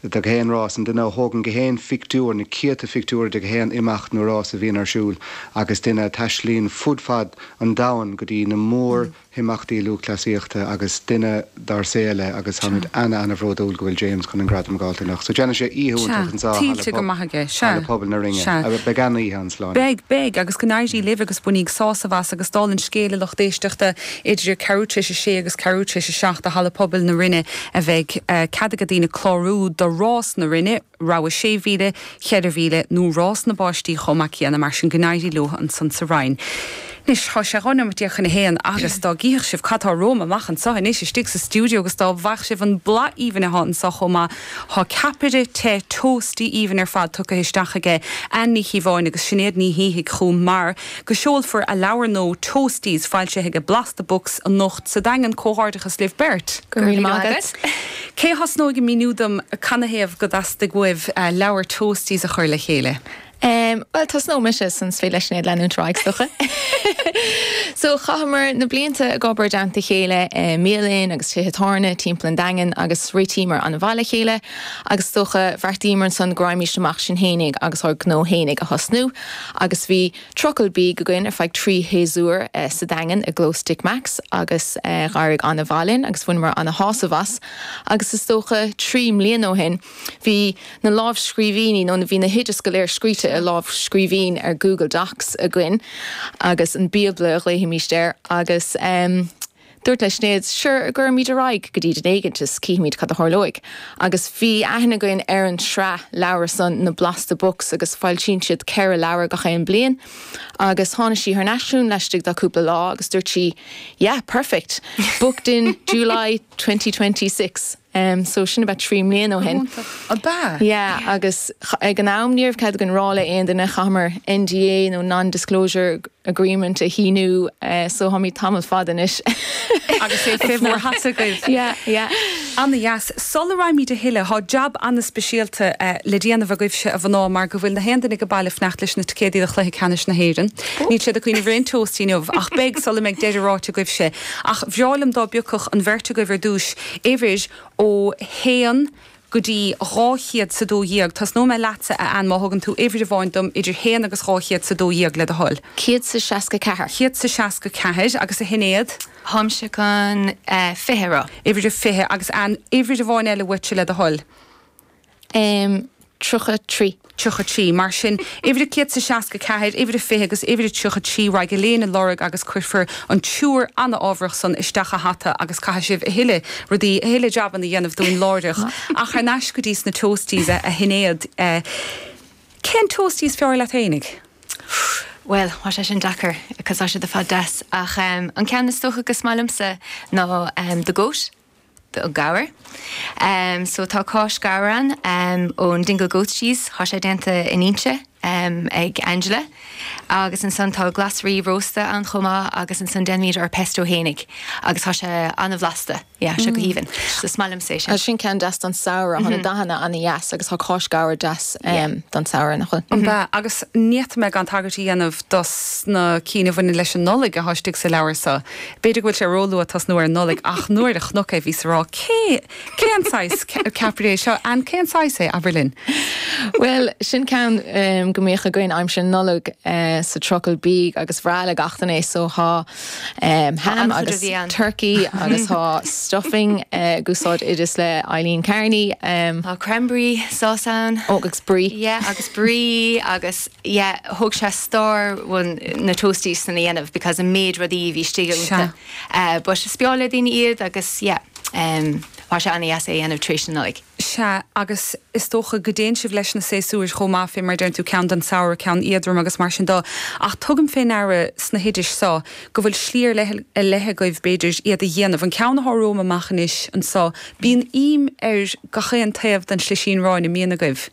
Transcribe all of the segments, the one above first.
de gach aon rás, an duine a thógann gach aon phictiúr, na céadta phictiúr de gach aon imeacht nó rás a bhíonn ar siúl agus duine a taistealaíonn fud fad an domhain go dtí na mór himeachtaí lúthchleasaíochta agus duine dár saol é agus táimid ana ana bhródúil go bhfuil James chun an gradam a dh'fháilt anocht. So déanfaidh sé oíche iontach anseo i Halla Pobail na Rinne. Beidh ana oíche ann, slán. Beidh, beidh agus go n-éirí libh agus bainigí sásamh as agus dála an scéil, a lucht éisteachta. Idir ceathrú tar éis a sé agus ceathrú tar éis a seacht i Halla Pobail na Rinne a bheidh cead ag daoine clárú do Rás na Rinne, rogha sé mhíle, cheithre mhíle nó Rás na bPáistí chomh maith céanna, mar sin go n-éirí leo ansan sa Rinn. Anois tá sé dhá nóimeat déag chun a haon agus dá gcífeadh sibh cad tá romham amach anso anois istigh sa stiúideo agus dá bhfaigheadh sibh an boladh aoibhinn athá anso chomh maith, thá ceapaire te toasty aoibhinn ar fad tugtha isteach aige Ann Ní Chíobháin agus Sinéad Ní Shíthigh chugam mar, go seolfar a leabhar nua Toasties foilsithe ag Blasta Books anocht sa Daingean Comhghairdeachas libh beirt. Go raibh míle maith agat. Cé a thosnóidh ag míniú dom canathaobh go dteastaigh uaibh leabhar Toasties a chur le chéile? Bhuel, tosnóidh mise, ansan is féidir le Sinéad leanúint ar aghaidh is dócha. So, chaitheamar na blianta ag obair i dteannta a chéile i mbialann agus tithe tábhairne timpeall an Daingin agus réitíomar an-mhaith le chéile agus is dócha, bheartaíomar ansan go raghaimís amach sinn fhéinig agus ár ngnó fhéinig a thosnú. Agus bhí trucail bídh againn ar feadh trí shéasúr sa Daingean i gclós Dick Mack's agus d'éirigh an-mhaith linn agus bhaineamar an-shásamh as. Agus is dócha trí mbliana ó shin bhí na lámhscríbhinní nó bhí na hoideas go léir scríte i lámhscríbhinn ar Google Docs againn agus an Bíobla a ghlaofaimíst air agus Dúirt le Sinéad, Sure, cuirfimid ar aghaidh go dtí duine éigint is cífimid cad a tharlóidh. Agus bhí aithne againn ar an sraith leabhar san, na Blasta Books agus foilsíonn siad ceithre leabhar gach aon bliain. Agus tháinig sí thar n-ais chugam laistigh de cúpla lá agus dúirt sí, Yeah, perfect! Booked in July twenty twenty six. Em so sin about trí mbliain ó shin. Go hiontach. Ab ea? Yeah agus ag an am ní raibh cead againn rá le aon duine chaitheamar NDA nó non disclosure agreement a shíniú eh so tháimid tamall fada anois. Agus é fé bhur hata agaibh. Yeah yeah. Ana dheas. Sula raghaimid a thuilleadh thá jab ana speisialta eh le déanamh agaibhse a mhná mar go bhfuil na haon duine age baile ag fanacht leis na ticéadaí do chluiche ceannais na hÉireann. Níl siad ag cuimhneamh ar aon toast inniu ach beidh sula mbeidh deireadh ráite agaibhse. Ach bhreá liom dá bpiocfadh an bheirt agaibh ar dtúis uimhir ó haon go dtí dhá chéad is a dó dhéag. Tosnóidh mé leatsa, a Ann, má thugann tú uimhir amháin dom idir haon agus dhá chéad is a dó dhéag, le do thoil. céad is a seasca ceathair. céad is a seasca ceathair. Agus, a Shinéad? Táimse chun fiche a rá. uimhir a fiche, agus aon uimhir amháin eile uaitse, le do thoil. um 33. tríocha trí. Mar sin, uimhir a céad is a seasca ceathair, uimhir a fiche agus uimhir a tríocha trí raghaidh Líona á lorg agus cuirfear an triúr an-ámharach san isteach sa hata agus caithfidh sibh a thuilleadh rudaí, a thuilleadh jabanna dhéanamh dúinn láithreach. Ach thar n-ais go dtí sna Toasties, a a Shinéad, cén Toastie is fearr leat fhéinig? Bhuel, thá sé sin deacair cos thá siad ar fad deas ach an ceann is dócha go is maith liomsa ná The Goat. gabhar. So tá cáis gabhair ann ón Dingle Goat Cheese, thá sé déanta in Inse ag Angela. Agus ansan tá glasraí rósta ann chomh maith agus ansan déanaimid ár pesto fhéinig agus thá sé an-bhlasta. Yeah, seo go haoibhinn. So is maith liom sé sin. Sin ceann deas don samhradh, thá na dathanna an-deas agus thá cáis gabhar deas don samhradh nach bhfuil? Ambaist. Agus n'fhéadfadh mé gan tagairt a dhéanamh dos na cinn a bhaineann leis an Nollaig athá istigh sa leabhar so. B'fhéidir go bhfuil sé ró luath tosnú ar an Nollaig ach nuair a chonac é bhíos á rá cé, cé an saghas ceapaire é seo? Anne, cé an saghas é, abair linn? Bhuel, sin ceann go mbíodh againn aimsir na Nollag sa trucail bídh agus ba bhreá le gach duine é so thá ham agus turkey agus thá stuffing ag úsáid oideas le Eileen Carney. Thá cranberry sauce ann. Ó agus brie. Yeah agus brie agus. yeah thóg sé stór chun na toasties san a dhéanamh because an méid rudaí bhí istigh agus tá eh but ba bhreá le daoine iad agus yeah em tá sé ana dheas é a dhéanamh tar éis na Nollaig. Sea, agus is dócha go dtéann sibh leis na séasúir chomh maith fé mar deireann tú ceann don samhradh ceann éadrom agus mar sin de ach tugaim fé ndeara sna hoidis so go bhfuil slí ar leith ar leith agaibh b'fhéidir iad a dhéanamh. An ceann a tharraingíos amach anois anso bíonn im ar gach aon taobh den slisín aráin a bhíonn agaibh.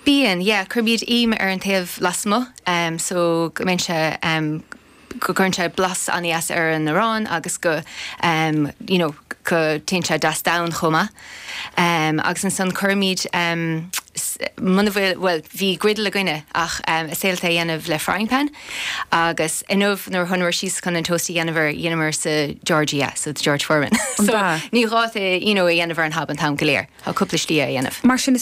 Bíonn, yeah, cuirimid im ar an taobh lasmuigh em so go mbíonn sé em go gcuireann sé blas an-deas ar an arán agus go em you know go dtéann sé deas donn chomh maith. Em agus ansan cuirimid em s- muna bhfuil bhuel bhí griddle againne ach em is féidir leat é a dhéanamh le frying pan agus inniu nuair a chuamar síos chun an toast a dhéanamh ar dheineamar sa George yeah so the George Foreman An ea? ní gá é you know a dhéanamh ar an hob an t-am go léir tá cúpla slí é a dhéanamh. Mar sin is.